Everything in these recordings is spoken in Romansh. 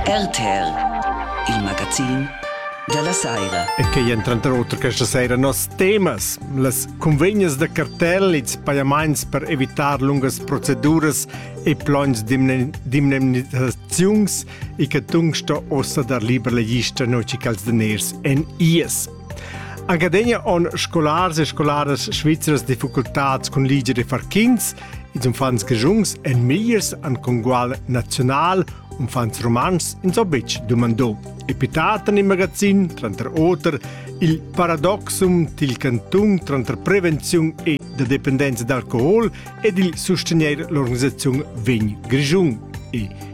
RTL, il magazin della saira. E che entran tranter questa sera nos temas, las convegnas da cartel e pajaments per evitar lungas proceduras e plons d'indemnizaziuns e che tung sto ossa dar liber legista noci cals daners en ies. Agadegna on scolars e scolaras svizras difficultats cun liger e far quints. Ils uffants grigiuns en migliers an congual naziunal, uffants romans ins ò betg dumandò. E pitat en il magazin, tranter oter, il paradoxum til cantung tranter prevenziun e da dependenza d'alcohol ed il sustenier l'organisaziun vegn grigiun. E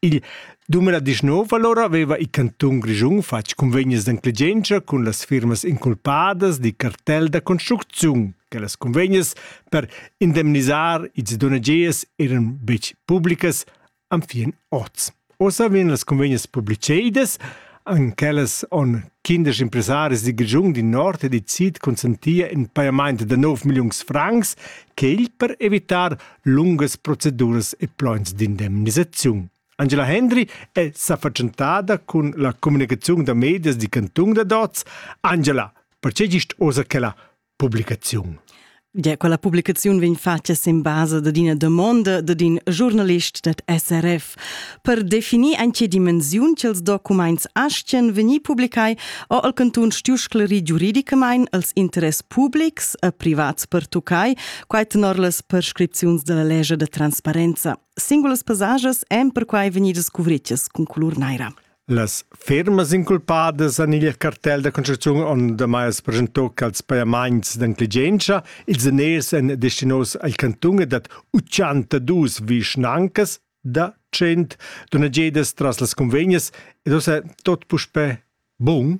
Il dumber da disnov alura aveva il cantun Grischun fatg cunvegnas d'enclegientscha cun las firmas inculpadas dil cartel da construcziun che las cunvegnas per indemnisar ils donagiers eran betg publicas anfien oz. Ossa vegn las cunvegnas publicedas, an quellas on kindisch impresaris di Grischun di Nord e di Sid consentia in paiamaint da 9 milliuns francs, quel per evitar lungas proceduras e plans d'indemnisaziun. Angela Hendry è sa fatschentada cun la communicaziun da medias di Canton da Dots. Angela, perché gist osa quella publicaziun? Ja, quella publicaziun vegn fatga sin basa dad ina domanda dad in giornalist dad SRF. Per definir en che dimensiun ch'ils documents astgan vegnir publicai ha il cantun stuiu sclerir giuridicamain els interess publics e privats pertuccai, quai tenor las prescripziuns della legge de transparenza. Singulas passages èn perquai vegnidas cuvritas con colur naira. Las fermas inculpadas han il cartel da construcziun ondamai presentò ch'als pajamaints d'intelligenza ils daners èn destinos al cantun e dat 82 vischnancas da 100 donagedas tras las cunvegnas ed ussa tot puspè bun?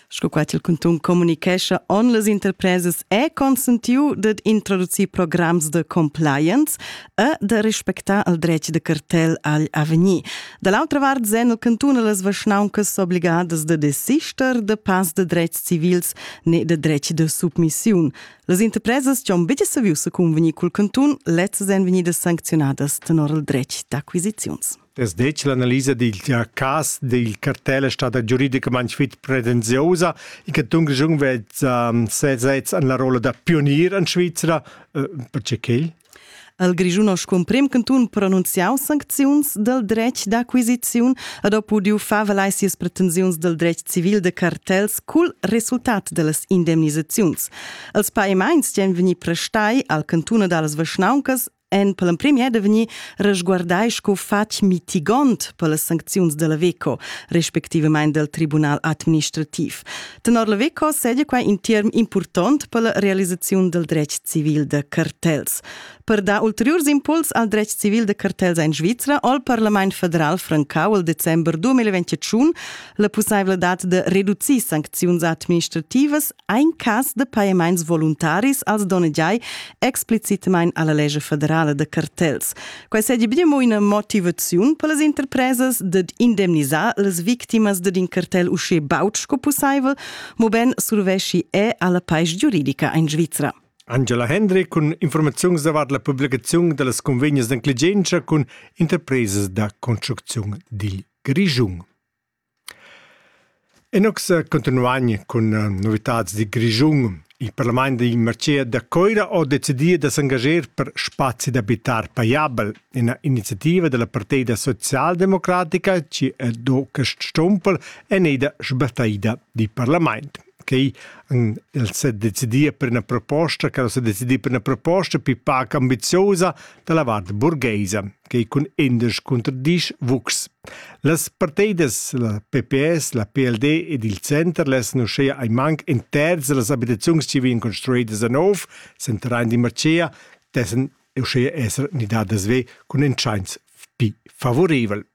sco quai il cantun communicescha, on las interpresas è consentiu dad introducir programs de compliance e de respectar il dretg de cartel agl avegnir. Da l'altra vart sen il cantun las vaschnauncas obligadas de desister de pas de drets civils ne de dretg de submissiun. Las interpresas che han bitte saviu se convenir col cantun letztes en venir sanzionadas tenor il dretg d'acquisizions. Es detg l'analisa dil cas dil cartel è stada giuridicamain fitg pretenziosa e che Tungjung vezza sesez en la rolla da pionier en Svizra. Eh, perché quel? Il Grischun ha scumprem cantun pronunziau sancziuns dal dretg d'acquisiziun ed ha pudiu far valai sias pretensiuns dal dretg civil de cartels cul resultat dellas indemnisaziuns. Els paimaints ch'en vegni prestai al cantun dallas vischnauncas en per l'emprim è da vegnir resguardai sco fatg mitigont per las sancziuns della VECO, respectivament del Tribunal administrativ. Tenor la VECO sedia quai in term important per la realisaziun del dretg civil de cartels. Per dar ulteriors impuls al dretg civil de cartels en Svizzera ho il Parlament federal francau il december 2021 la pussaiveldat de reducir sancziuns administrativas Ein cass de pajamaints voluntaris als donnegiai explicitmain alla legge federale de cartels. Quai seigi be mo ina motivaziun per las interpresas ded indemnisar las victimas ded in cartel usche baut sco pussaivel, mo ben survesci è alla pais giuridica in Svizzera. Angela Hendry cun informaziuns davart la publicazione delle convegnes d'enclegienza con interprese da construzione dil Grigiun. Inox cuntinuain cun novitads dil Grischun. Il parlament dil marcher da Coira ha decidì da s'engaschar per spazi d'abitar pajabel, ina iniziativa dalla Partida socialdemocratica chi ha do quest stumpel eneda sbattaida dil parlament. quei han els decidia per una proposta che sa decidia per una proposta più pac ambiziosa dalla vart burgheisa che cun indesch contro disch vux las parteidas la pps la pld ed il center lassen uschea ein manc in terz das abitaziuns che vien construidas a nov sen terrain di marcea dessen uschea esser nidadas ve cun entscheins pi favorivel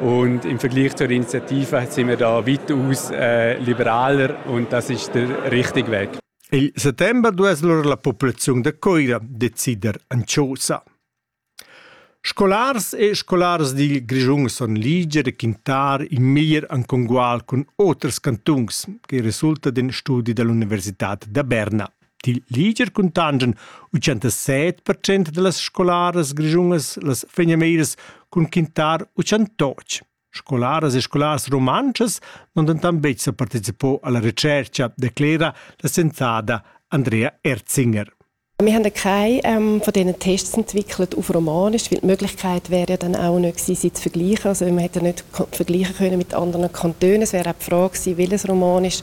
Und im Vergleich zur Initiative sind wir da weitaus äh, liberaler und das ist der richtige Weg. Il settembre dues allora la popolazione de Coira decider Anciosa. Scolars e scolars dil Grischun son liger e quintar il mir an congual cun oters cantuns, che resulta den studi dell'Università da Berna. Dil liger cuntanschan 87 percent dallas scolaras grischunas las fegnameras cun quintar 88. Scolaras e scolars rumantschas non denton betg sa participò alla recerca, declera la sensada Andrea Erzinger. Wir haben keine ähm, von diesen Tests entwickelt auf Romanisch, weil die Möglichkeit wäre ja dann auch nicht gewesen, sie zu vergleichen. Also man hätte nicht vergleichen können mit anderen Kantonen. Es wäre auch die Frage gewesen, welches Romanisch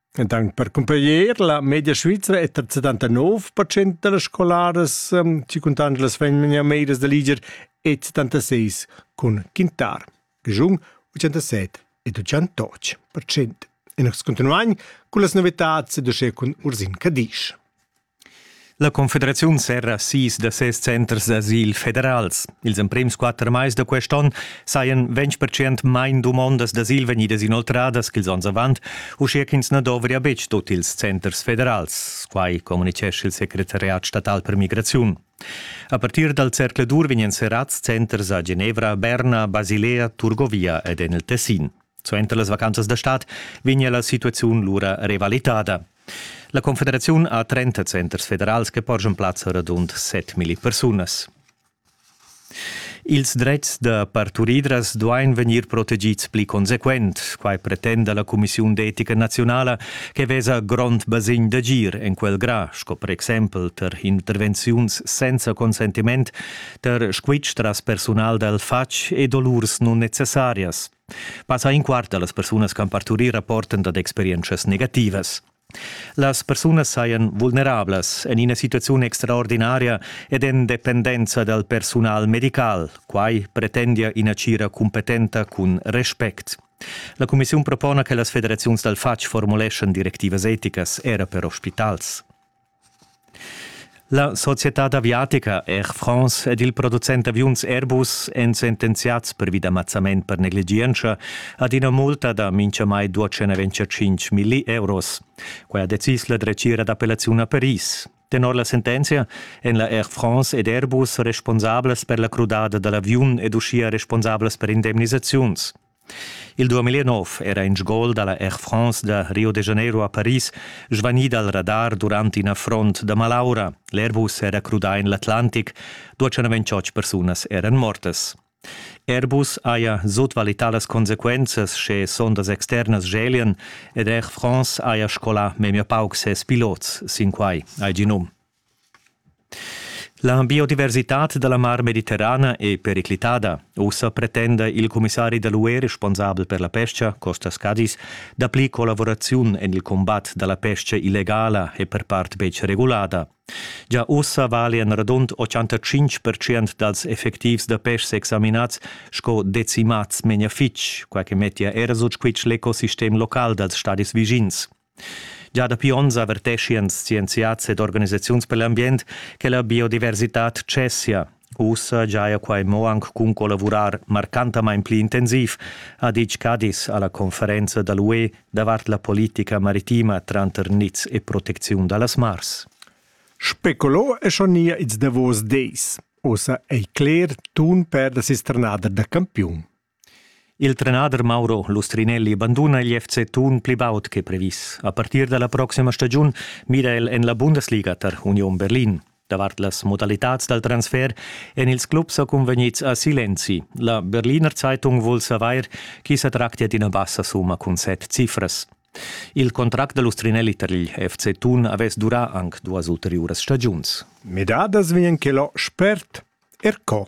ed anche per comparer la media svizra è tar 79% da las scolaras um, ci contan las vegnan meiras da liger e 76 cun quintar, giun 87 e 88%. E nos continuain con las novetats ed usce cun Ursin Cadisch. La Confederaziun serra sis da ses centers d'asil federals. Ils emprims quatter mais da quest onn sajan 20% main dumondas d'asil vegnidas inoltradas ch'ils onns avant, uschia ch'ins na dovria betg tut ils centers federals. Quai communitgescha il secretariat statal per migraziun. A partir dal zercladur vegnan serrads centers a Genevra, Berna, Basilea, Turgovia ed en il Tessin. Suenter las vacanzas da stad vegnia la situaziun lura revalitada. La Confederaziun ha 30 centers federals che porschan plazza radund 7.000 persunas. Ils dretgs da parturidras duain vegnir protegids pli consequent. Quai pretenda la Cumissiun d'etica naziunala che vesa grond basegn d'agir en quel gra, sco per exempel tar intervenziuns senza consentiment, tar squitsch tras persunal dal fatg e dolurs nunnecessarias. Passa in quart da las persunas che han parturì rapportan dad experientschas negativas. Las persunas sajan vulnerablas en ina situaziun extraordinaria ed en dependenza dal persunal medical. Quai pretendia ina tgira cumpetenta cun respect. La cumissiun propona che las federaziuns dal fatg formuleschan directivas eticas era per ospitals. La societad aviatica Air France ed il producent d'aviuns Airbus èn sentenziads pervi da mazzament per negligientscha ad ina multa da mintgamai 225 milli euros. Quai ha decis la dretgira d'appellaziun a Paris. Tenor la sentenzia èn la Air France ed Airbus responsablas per la crudada da l'aviun ed uschia responsablas per indemnisaziuns. Il 2009 era in gol dalla Air France da Rio de Janeiro a Paris svanì dal radar durant in affront da malaura. L'Airbus era crudà en l'Atlantic, 228 persunas eran mortas. Airbus haja sutvalità las consequenzas sche sondas externas gelian ed Air France haja scolà memia pauc ses pilots sin quai, hai gì num. La biodiversitad da la Mar Mediterrana è periclitada. Ussa pretenda il cumissari da l'UE responsabel per la pesca, Costas Cadzis, dapli collaboraziun en il combat da la pesca illegala e per part betg regulada. Già ussa valian radund 85% dals effectivs da pestga examinads sco decimats memia fitg, quai che mettia era sut squitsch l'ecosistem local dals stadis vischins. Gia dapi onns averteschian scienziads ed organisaziuns per l'ambient che la biodiversitad tschessia. Ussa giaja quai mo anc cun collavurar marcantamain pli intensiv, ha ditg Cadiz a la conferenza da l'UE davart la politica maritima tranter niz e protecziun da las mars. Speculo è schon nia ils davos dis. Ussa ei cler tun per la sisternader da campiun. Il trenader Mauro Lustrinelli banduna il FC Thun pli baud che previs. A partir da la proxima stagiun mira el en la Bundesliga tar Union Berlin. Davart las modalitads dal transfer èn ils clubs sa cunvegnids a Silenzi. La Berliner Zeitung vul savair chi sa tractia d'ina bassa summa cun set cifras. Il contract da Lustrinelli tar il FC Thun avess durà anc duas ulteriuras stagiuns. Midadas vegn quel spert, er co.